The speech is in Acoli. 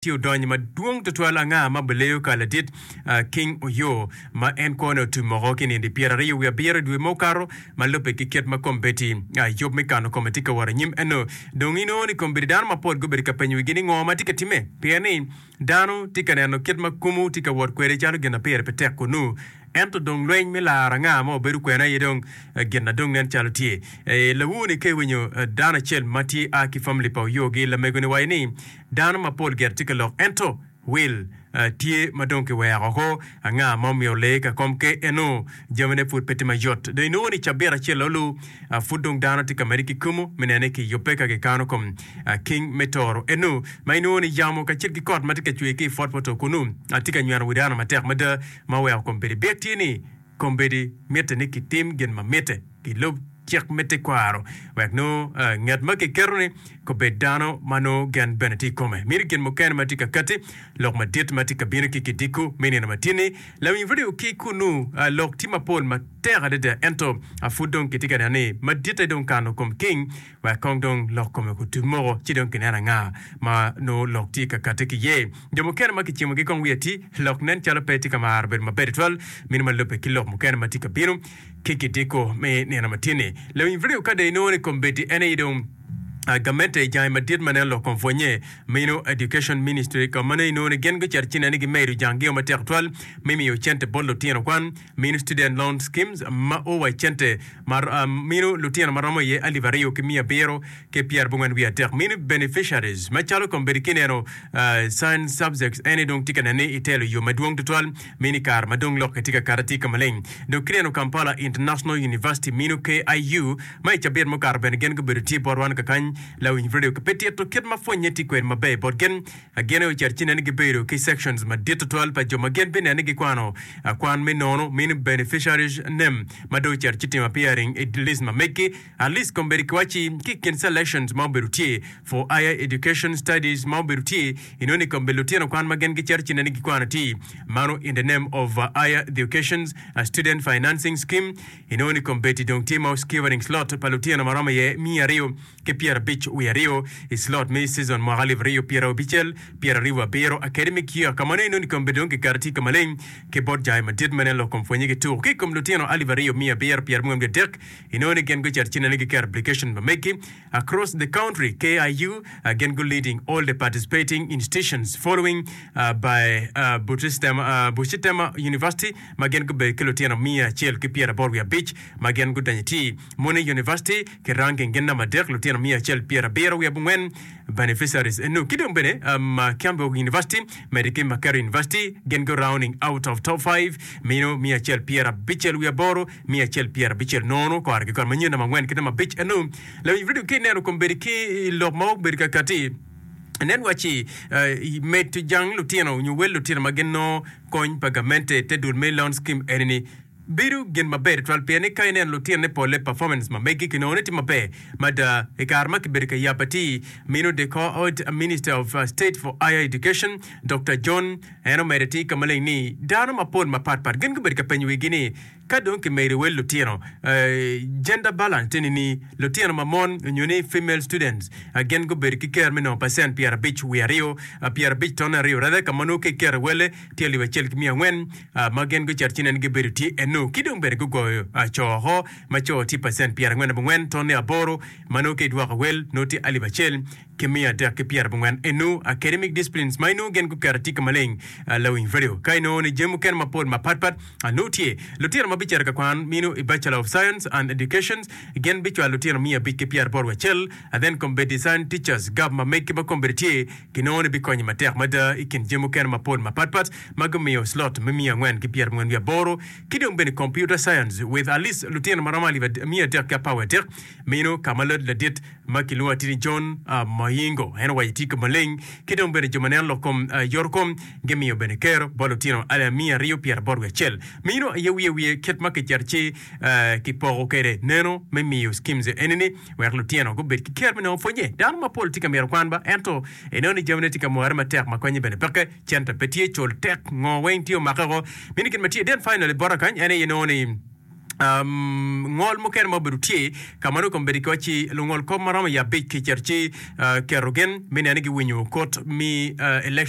ci odony madwong tutwal anga ma bileyo ka ladit King Oyo ma en kwone otwi moko ki nindi pyera aryo wiye abiro i dwe ma okato ma lubbe ki kit ma kombeddi yub me kano kome tye ka wot anyim eno dong inongo ni kombeddi dano mapol gubedo ka penyo wigi ni ngo ma tye ka timme pien ni dano tye ka neno kit ma kumu tye ka wot kwede calo gin ma pire pe tek kunu ento dong lweny me laro anga ma wabedo kwene aye dong gin na dong nen calo tye lawu ni ka iwinyo dano acel ma tye a ki family pa Oyo gi lamego ni waci ni Dano mapol gire tye ka lok, ento wil tye ma dong kiweko oko. Anga ma omiyo lee ka kom ke eno? Jamine pud pe tye mayot. Dong inongo ni cabit acel olu, pud dong dano tye ka mede ki kumo me neno ni kiyubbe ka kikano kom king me toro eno, ma inongo ni yamo kacel ki kot ma tye ka cwer ki i pwotpwoto kunnu tye ka nyweno wi dano matek mada ma oweko kom bedo i byek. Tye ni, Kombeddi mitte ni kitim gin ma mitte, kilub cik me tekwaro wek nongo nget ma kiketo-ni obed dano ma nongo gen bene tye i kome. Miti gin mukene ma tye ka katti, lok madit ma tye ka bino ki kidiko me nino ma tye-ni. Lawiny vidio ki kunnu. Lok tye mapol matek adada, ento pud dong kitye ka neno ni maditte dong kano kom king. wek kong dong lok kome kutut moko ci dong kinen anga ma nongo lok tye ka katte ki iye. Jo mukene ma kicimogi kong wiye ti lok nen calo pe tye ka maro bedo maber tutwal meno ma lubbe ki lok mukene ma tye ka bino ki kidiko me nino ma tye-ni. Lawiny vidio ka dong inongo ni kombeddi en aye dong gamente jange madit ma nen lok kong pwonye meno, Education Ministry, ka ma nongo inongo ni gin gucito ci neno ni gimedo jang-gio matek tutwal me miyo cente bot lutino kwan. Minu Student Loan Schemes ma o wa i cente ma minu lutino ma romo iye alip aryo ki miya abiro ki pyerabongwen wiye adek. Minu Beneficiaries macalo kombeddi ki ineno Science Subjects ene dong tye ka nen ni itelo i yo madwong tutwal minu i kare ma dong lok-ki tye ka kati atika maleng. Dok ki ineno Kampala International University minu KIU ma i cabit mukato bene gin gubedo tye bot wan kakany lawinyb radio ki pe tito kit ma pwonye tye kwede maber bot gin. Ageno ni carcine ni gibedo ki sections madit tutwal pa jo ma gin bineno ni gikwano akwan me nono, meaning beneficiaries name, ma dong carci timo appearing i list ma meggi, at least kombeddi kiwacci ki i kin selections ma obedo tye for higher education studies ma obedo tye inoni i kombeddi lutino kwan ma gin ki carcine ni gikwano tye mano in the name of higher educations student financing scheme inoni kombeddi dong tye ma oskewering slot pa lutino ma romo iye miya aryo ki pyera abic wiye aryo i slot me cizon mwaka alip aryo pyera abicel pyera aryo wa biro Academic year ka ma nongo inongo kom bene dong kikati tye ka maleng ki bot jai madit ma nen lok kom pwonye ki tuku ki i kom lutino alip aryo miya abiro pyera abongwen ki adek inongo ni gin gucito ci nene giketo application pa megi across the country KIU uh, gin gu leading all the participating institutions following uh, by uh, Buchistem uh, Buchistem University ma gin gubedo ki lutino miya acel ki pyera aboro wiye abic ma gin gudonyo ti Muni University ki rangi gin namba adek, lutino miya acel pyera abiro wiye abongwen, beneficiaries, eno ki dong bene um, Kiambu University medi ki Makerere University gin go rounding out of top five mino miya acel pyera abicel wiye aboro, miya acel pyera abicel nono kore ki kore manyen namba angwen ki namba abic eno. Lawiny Freedom ki neno kom bedi ki i lok ma obedo kakati nen waci uh, medo jang lutino nyo wel lutino ma gin nongo kony pa gamente te dul me loan scheme eni ni. Bedo gin maber twal pien ni ka ineno lutinone polle performance ma megi ki nongo ni tye maber mada i kare ma kibedo ka yabo atir meno de kor ot Minister of State for Higher Education Dokta John en omedo atir ka maleng ni dano mapol mapat pat gin gubedo ka penyo wigi ni ka dong kimedo wel lutino gender balance tye nini lutino ma mon onyo ni female students gin gubedo ki ker me nongo percent pyerabic wiye aryo pyerabic ton aryo rather ka ma nongo ka iketo i welle tye alip acel ki miya angwen ma gin gucito ci nen gibedo tye eno ki dong bene gugoyo co woko ma co tye pacent pyerangwen abongwen ton ni aboro ma nongo ka idwoko wel nongo tye alip acel ki miya adek ki pyerabongwen eno academic disciplines ma inongo gin guketo atika maleng lawiny value ka inongo ni jami mukene mapol mapat pat nongo tye lutino ma bicito kakwan mino i bachelor of science and educations gin bicwalo lutino miya abic ki pyeraboro wacel then kombeddi science teachers gov ma megi ba kombeddi tye Ginongo-ni bikonyi matek mada i kin jami mukene mapol mapatpat ma gumiyo slot me miya angwen ki pyerangwen wiye aboro ki dong bene Computer Science with at least lutino ma romo alip miya adek ki apar wiye adek. Meno ka ma lad ladit ma kilwongo Atini John Mohingo en owaco tye ka maleng ki dong bene jo ma neno lok kom yoto kom gimiyo bene kero bot lutino alip miya aryo pyera aboro wiye acel. Meno aye wiye wiye kit ma kicito ci kipoko kwede neno me miyo schemes eni-ni. wek lutino gubed ki ker me nongo pwonye. Dano mapol tye ka myero okwan ba, ento ineno ni jamine tye ka more matek ma konye bene peke. Cente pe tye, col tek, ngo weng tye omake woko. Mini gin ma tye den finally bota kany en aye nongo ni ngol mukene ma obedo tye ka ma nongo kome bedo ki waci lungol kop ma romo i abic kicito ci keto gin me neno ni giwinyo kut me election